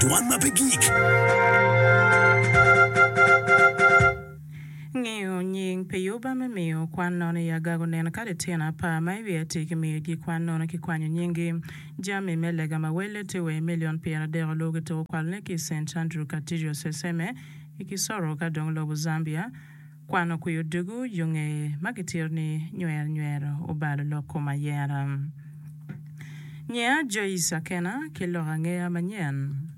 Dwan ma pe gik. Ngeyo nying pi Yuba me miyo kwan nono i agago neno kadi tyen apar ma i wiye atir ki miyo ji kwan nono ki kwanyo nyingi. Jami me lega ma welle tye wa i milion pyeradek oluwu ki tuko kwalone ki i Saint Andrew Cathedral Seseme i Kisoro ka dong lobo Zambia. Kwano kwi odego yo ngeye ma gitito ni Nywer Nywero obalo lok kom ayera. Nyeya Joyce Akena ki lok angeya manyen.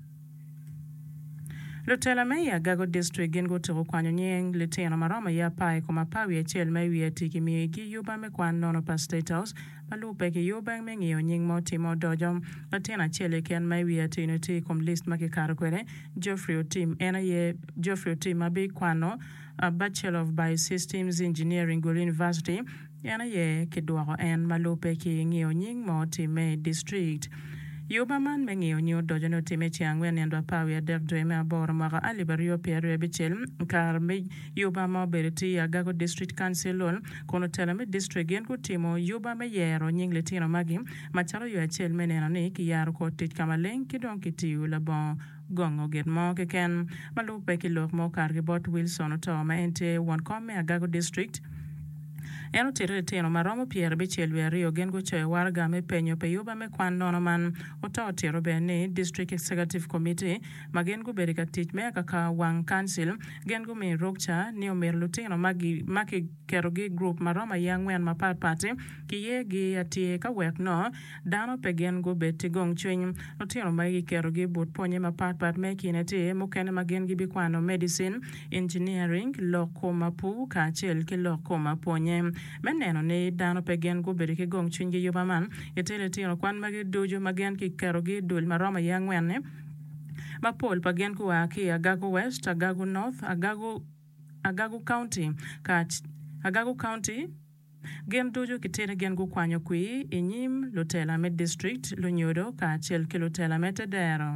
Lutela me i Agago District gin gutuku kwanyo nying litino maromo i apar i kom apar wiye acel ma i wiye ati ki miyo igi yuba me kwan nono pa State House, ma lubo pe ki yo bang me ngiyo nying ma otimo odoco. Latin acel keken ma i wiye atir ni tye i kom list ma kikato kwede, Geoffrey Otim, en aye Geoffrey Otim ma bi kwano Bachelor of Biosystems Engineering Gulu University, en aye ki dwoko en ma lubo pe ki ngiyo nying ma otimme i district. Yo ma man me ngiyo nying odoco ni otimme i ceng angwen nino dwe apar wiye adek dwe me aboro mwaka alip aryo pyeraryo abicel, kare me. Yuba ma obedo tye i Agago District Councilol kun otelo me district gin gutimo yuba me yero nying litino magi macalo yo acel me neno ni kiyaro kor tic ka maleng ki dong kitiyo labongo gongo git mo keken ma lubbe ki lok ma okato ki bot Wilson Otoo ma en tye won kom me Agago District. En otito litino ma romo pyerabicel wiye aryo gin gucoyo waraga me penyo pi yuba me kwan nono man. Otoo otito bene ni District Executive Committee ma gin gubedo ka tic me akaka wang kancil Gin gumiyo rukca ni omyero lutino ma kiketogi i gurup ma romo aye angwen mapat pat-ti kiyegi atir ka wek nongo dano pe gin gubed ki gongcwiny. Lutino magi kiketogi i but pwonye mapat pat me i kine-ti, mukene ma gin gibikwano medicin, engineering, lok kom apur kacel ki lok kom apwonye. Me neno ni dano pe gin gubedo ki gongcwiny ki yuba man, gitye litino kwan magi ducu ma gin kiketogi i dul ma romo aye angwen-ni. mapol pa gin gua ki i Agago West, Agago North, Agago, Agago County, Agago County, gin ducu kitidi gin gukwanyo kwir i nyim lutela me district, lunyodo kacel ki lutela me te dero.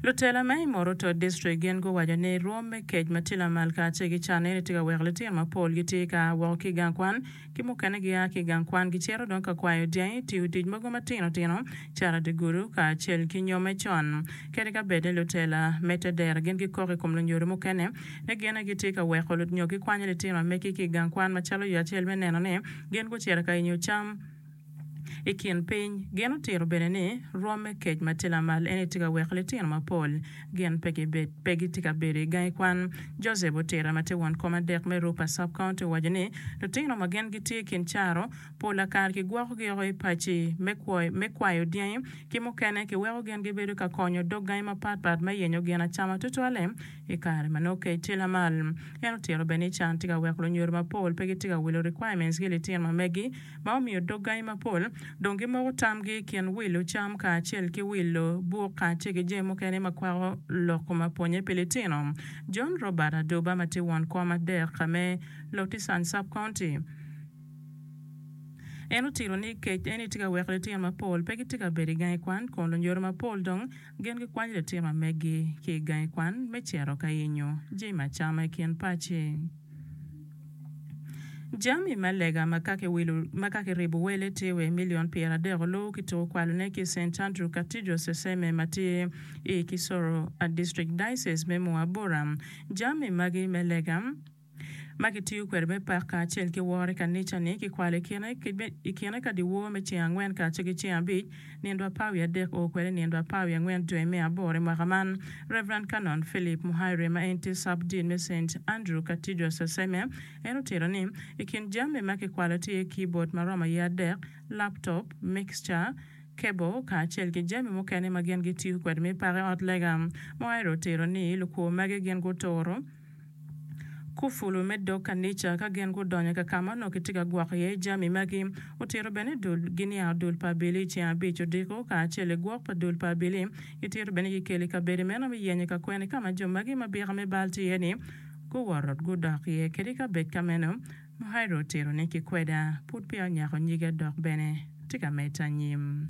Lutela ma i Moroto District gin guwaco ni rwom me kec ma tye lamal kacel ki canne ni tye ka weko litino mapol gitye ka wok ki i gang kwan ki mukene gia ki i gang kwan gicito dong ka kwayo dyangi, tiyo tic mogo matino tino calo dye-gudo kacel ki nyo me con. Kadi ka bed ni lutela me te dero gin gikok i kom lunyodo mukene ni gin aye gitye ka weko nyo gikwanyo litino ma megi ki i gang kwan macalo yo acel me neno ni gin gucito ka yenyo cam, I kin piny, gin otito bene ni rwom me kec ma tye lamal eni tye ka weko litino mapol gin pe gitye ka bedo i gangi kwan. Joseph Otira ma tye won kom adek me Rupa Sub-County owaco ni, Lutino ma gin gitye i kin caro, pola kare kigwokogi woko i paci me kwayo dyangi ki mukene kiweko gin gibedo ka konyo dog gangi mapatpat me yenyo gin acama tutwalle i kare ma nongo kec tye lamal. En otito bene ni can tye ka weko lunyodo mapol pe gitye ka wilo requirements ki litino ma megi ma omiyo dog gangi mapol dong gimoko tamgi i kin wilo cam kacel ki wilo buk kacel ki jami mukene ma kwako lok koma pwonye pi litino. John Robert Aduba ma tye won kom adek me Lotissane Sub-County, en otito ni kec eni tye ka weko litino mapol pe gitye ka bedo i gangi kwan kun lunyodo mapol dong gin gikwanyo litino ma megi ki i gangi kwan me cito ka yenyo jami acama i kin paci. Jami me lega ma ka kiwilo ma ka kiribo wele tye wa i milion pyeradek oluwu ki tuko kwalone ki i Saint Andrew Cathedral, Seseme, ma tye i Kisoro District, Diocese me Moa Bura. Jami magi me lega ma kitiyo kwede me pak kacel ki woro i kanica-ni kikwalo i kine ka dyewor me ceng angwen kacel ki ceng abic, nindwa apar wiye adek oo kwede i nindwa apar wiye angwen joi me aboro i mwaka man. Rev. Canon Philip Muhairwe ma en tye Sub Dean me Saint Andrew Cathedral Seseme en otito ni, I kin jami ma kikwalo tye iye kibod ma romo iye adek, laptop, mixture, cable kacel ki jami mukene ma gin gitiyo kwede me pake ot lega. Muhairwe otito ni, Lukwor magi gin guturo. Kufulu me dog kanica ka gin gudonyo ka ka ma onongo kitye ka gwoko iye jami magi. Otito bene ni dul giniang dul pa abili i ceng abic odiko, kacel i gwok pa dul pa abili. Gitito bene ni gikelo i kabedo meno me yenyo ka kwene ka ma jo magi ma bika me bal tye iye-ni guwoto gudok iye. Kadi ka bed ka meno, Muhairah otito ni, Kikweda pud peya onyako nyige dok bene tye ka medde anyim.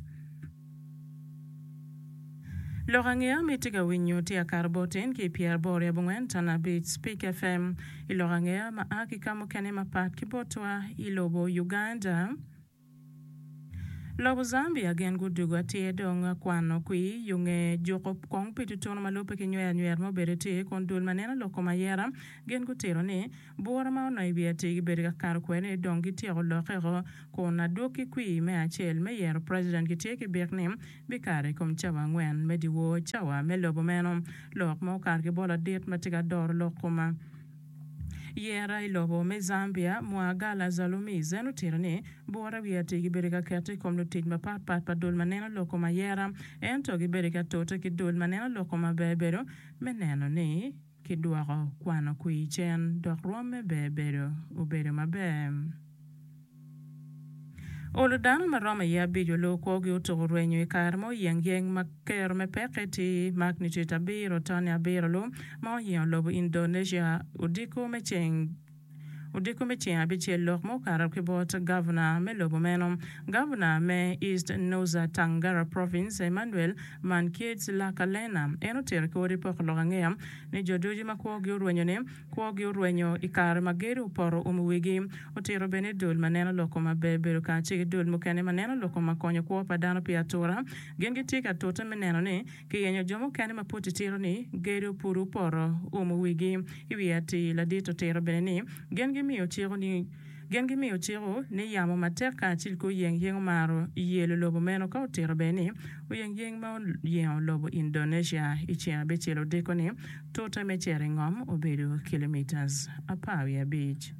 Lok angeya ma itye ka winyo tye Akar Botin ki Pier Bor Yab Ongwen Tan Abic, Speak FM, i lok angeya ma a ki ka mukene mapat ki botwa i lobo Uganda, lobo Zambia gin gudugo atyer dong kwano kwi yo nge juko kong pi tutunu ma lubbe ki nywer anywera ma obedo tye kun dul ma neno lok kom ayera gin gutito ni Bura ma onongo i wi atir gibedo ka kato kwede ni dong gityeko lokke-o kun adwog ki kwir me acel me yero preciden gitye ki bik ni bikato i kom cawa angwen me dyewor cawa me lobo meno. Lok ma okato ki bolo adit ma tye ka doro lok koma yera i lobo me Zambia, Mwagala Zalumis en otito ni bura i wi atir gibedo ka keto i kom lutic mapat pat pa dul ma neno lok koma yera ento gibedo ka tute ki dul ma neno lok koma bedo me neno ni kidwoko kwano kwir cen dok rwomme ber bedo obedo maber. Olo dano ma romo iye abico loo kwogi otuko rwenyo i kare ma oyeng yeng ma kero me pekki ti magnitude abiro tone abiro loo ma oyingo lobo Indonesia odiko me ceng Odiko me ceng abicel lok ma okato ki bot Gavna me lobo meno, Gavna me East Nusa Tangara Province Emmanuel Mankiedz Lakalena en otito ki odi poko lok angeya ni jo ducu ma kwogi orwenyo ni kwogi orwenyo i kare ma gedo opoto umo wigi. Otito bene ni dul ma neno lok koma ber bedo kacel ki dul mukene ma neno lok koma konyo kwo pa dano pi atura gin gitye ka tute me neno ni Kiyenyo jo mukene ma pud titiro ni gedo pud opoto oumo wigi. I wi atir, ladit otito bene ni, Gen gimiyo ciko ni Gen gimiyo ciko ni yamo matek kacel ki oyengyeng omaro yelo lobo meno ka otito bene ni, Oyengyeng ma oyengo lobo Indonesia i ceng abicel odiko ni tute me cere i ngom obedo kilometres apar wiye abic.